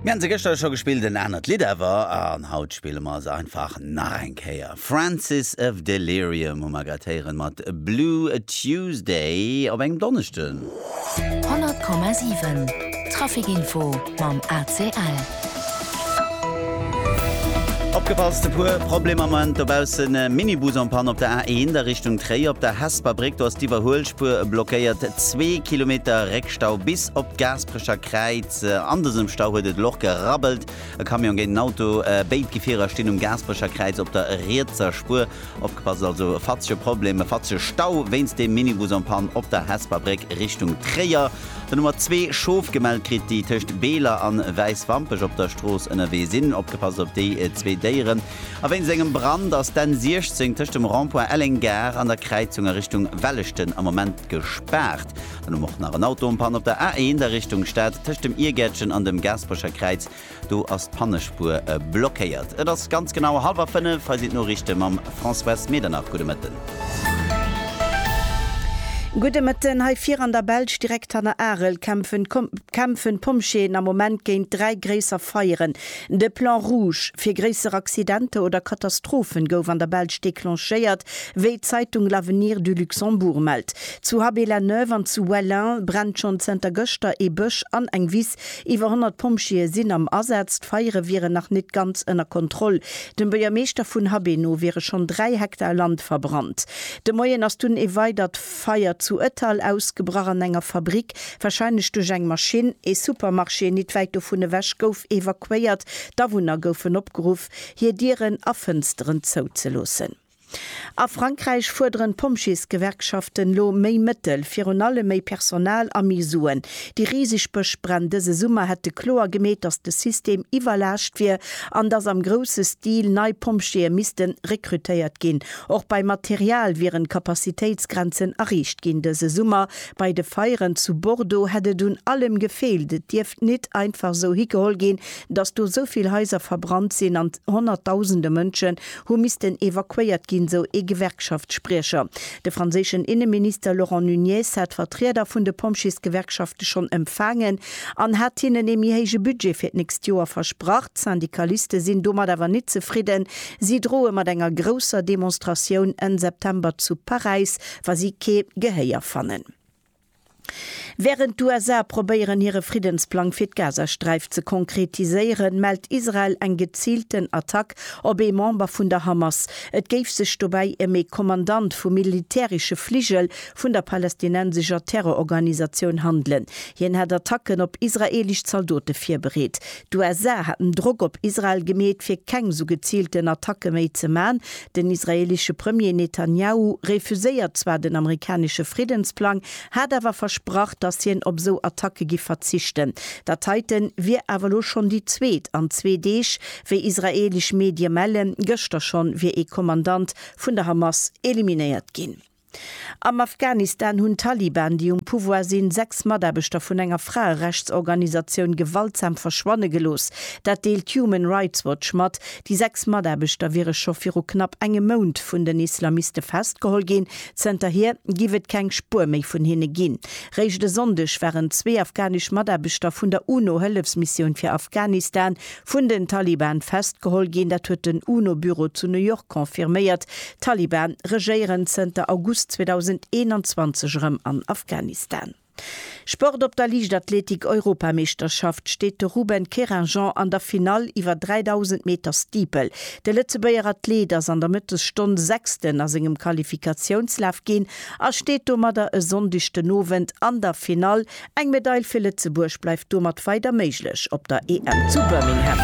Mir haten se gëschter scho gespillt, en anert Lidd awer, an haut spille mer se einfach nach eng Kéier. Francis of Delirium hu mer grad héieren mat Blue Tuesday op engem Donneschden. 100,7 Traficinfo mam ACL. Opgepasst, e puer Problemer am Moment dobaussen, Minibus en Panne op der A1 a Richtung Tréier, op der Hesper Bréck, do ass d'Iwwerhuelspuer blockéiert, zwee Kilometer Réckschlag. Stau bis op d'Gaasprecher Kräiz. An dësem Stau huet et elo och gerabbelt. E Camion géint en Auto, béid Gefierer stinn um Gaasprecher Kräiz op der rietser Spuer. Opgepasst also, e fatzege Problem, e fatzege Stau wéinst dem Minibus en panne op der Hesper Bréck Richtung Tréier. Den Nummer zwee Schof gemellt kritt, déi tëscht Beeler an Wäiswampech op der Strooss ënnerwee sinn. Opgepasst op déi zwee Déieren. A wéinst engem Brand ass d'N 16 tëscht dem Rond-point Elleng Gare an der Kräizung a Richtung Welleschten am Moment gespaart. Dann hu mer och nach en Auto en Panne op der A1 a Richtung Stad, tëscht dem Iergärtchen an dem Gaasperecher Kräiz. Do ass d'Pannespuer blockéiert. Et ass ganz genau hallwer fënnef. Hei sinn d'Noriichte mam Françoise Medernach. Gudde Mëtten. Gudde Mëtten. Hei vir an der Belsch, direkt hanner Arel, kämpfen kämpfen d'Pompjeeën am Moment géint dräi gréisser Feieren. De Plan rouge fir gréisser Accidenter oder Katastrophen gouf an der Belsch declenchéiert. Wéi d'Zeitung L'Avenir du Luxembourg mellt, zu Haby-la-Neuve an zu Wellin brennt schonn zënter gëschter ee Bësch an eng Wiss. Iwwer 100 Pompjeeë sinn am Asaz. D'Feiere wieren nach net ganz ënner Kontroll. Dem Buergermeeschter vun Haby no wiere schonn 3 Hektar Land verbrannt. De Moien ass dunn ee weidert Feier zu Ettal ausgebrach an enger Fabrick, warscheinlech duerch eng Maschinn. Ee Supermarché nit wäit dovun ewech gouf evakuéiert. D'Awunner goufen opgeruff, hir Dieren a Fënsteren zou ze loossen. A Frankräich fuerderen d'Pompjeesgewerkschaften lo méi Mëttel, virun allem méi Personal a méi Suen. Déi riseg Bëschbränn dëse Summer hätte kloer gemeet, datt de System iwwerlaascht wier an datt am grousse Stil nei Pompjeeë misste rekrutéiert ginn. Och beim Material wieren d'Kapazitéitsgrenzen erreecht ginn. Dëse Summer bei de Feieren zu Bordeaux hätt et un allem gefeelt. Et dierft nit einfach esou higeholl ginn, datt do esou vill Haiser verbrannt sinn an honnertdausende Mënschen hu missten evakuéiert ginn, esou ee Gewerkschaftsspriecher. De franséischen Inneminister Laurent Nunez hat d'Vertrieder vun de Pompjeesgewerkschafte schonn empfaangen an hat hinnen ee méi héije Budget fir d'nächst Joer versprach. D'Syndikaliste sinn domat awer net zefridden. Si droe mat enger grousser Demonstratioun Enn September zu Paräis, wa si kee Gehéier fannen. Wärend d'USA probéieren hire Friddensplang fir d'Gazasträif ze konkretiséieren, mellt Israel eng geziilten Attack op ee Member vun der Hamas. Et géif sech dobäi ëm ee Kommandant vum militäresche Fligel vun der palästinensescher Terrororganisatioun handelen. Hien hätt Attacken op israeelesch Zaldote virbereet. D'USA hätten Drock op Israel gemeet, fir keng sou geziilten Attacke méi ze man, Den israeelesche Premier Netanjahu refuséiert zwar den amerikanesche Friddensplang, hat awer versprach, datt hien op esou Attacke giff verzichten. Dat heite wier awer elo schonn déi zweet an zwee Deeg. Wéi israeelesch Medie mellen, gëschter schonn wier ee Kommandant vun der Hamas eliminéiert ginn. Am Afghanistan hunn d'Taliban, déi um Pouvoir sinn, sechs Mataarbechter vun enger Fraerechtsorganisatioun gewaltsam verschwanne gelooss. Dat deelt Human Rights Watch mat. Déi sechs Mataarbechter wiere scho viru knapp engem Mount vun den Islamiste festgeholl ginn. Zënterhier géif et keng Spuer méi vun hinne ginn. Réischt e Sonndeg waren zwee afghanesch Mataarbechter vun der UNO-Hëllefsmissioun fir Afghanistan Vun den Taliban festgeholl ginn, dat huet den UNO-Büro zu New York confirméiert. D'Taliban regéieren zënter August 2021 erëm an Afghanistan. Sport Op der Liichtathletik-Europameeschterschaft steet de Ruben Querinjean an der Finall iwwer 3.000 Meter Steeple. De Lëtzebuerger Athlet ass an der Mëttesstonn Sechsten a sengem Qualifikatiounslaf ginn a steet domadder e Sonndeg den Owend an der Finall Eng Medail fir Lëtzebuerg bleift domat weider méiglech op der EM zu Birmingham.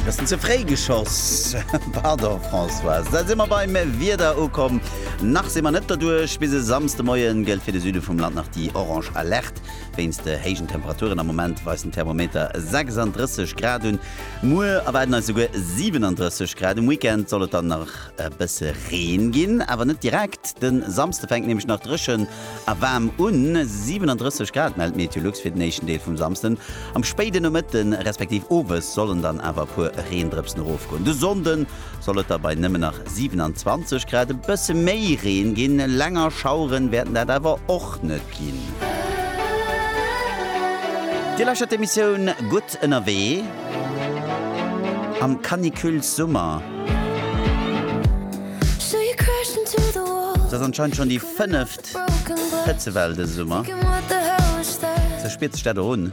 Bessen ze fréi geschoss. Pardon Françoise. Da si mer beim Wieder ukomm. Nach si mer net derduerch. Bis e Samsdemoien gëllt fir de Süde vum Land nach déi orange Alerte wéinst de héijen Temperaturen. Am Moment weist den Thermometer 36 Grad un. Muer erwaarden eis souguer 37 Grad. Um Weekend soll et dann nach. E bësse Reen ginn, awer net direkt. De Samsde fänkt nämlech nach dréchen a waarm un, 37 Grad mellt Meteolux fir den éischten Deel vum Samsden. Am spéiden Nomëtte respektiv Owes sollen dann awer e puer Reendrëpsen erofgoen. De Sonnde soll et da bei nëmmen nach 27 Grad e bësse méi Reen ginn, länger Schaueren wäerten dat awer och net. Musek ginn. Dir lauschtert d'Emissioun Gutt ënnerwee am Canicules Summer. Et ass anscheinend schonn déi fënneft Hëtzewell dëse Summer. Sou spiert sech dat och un.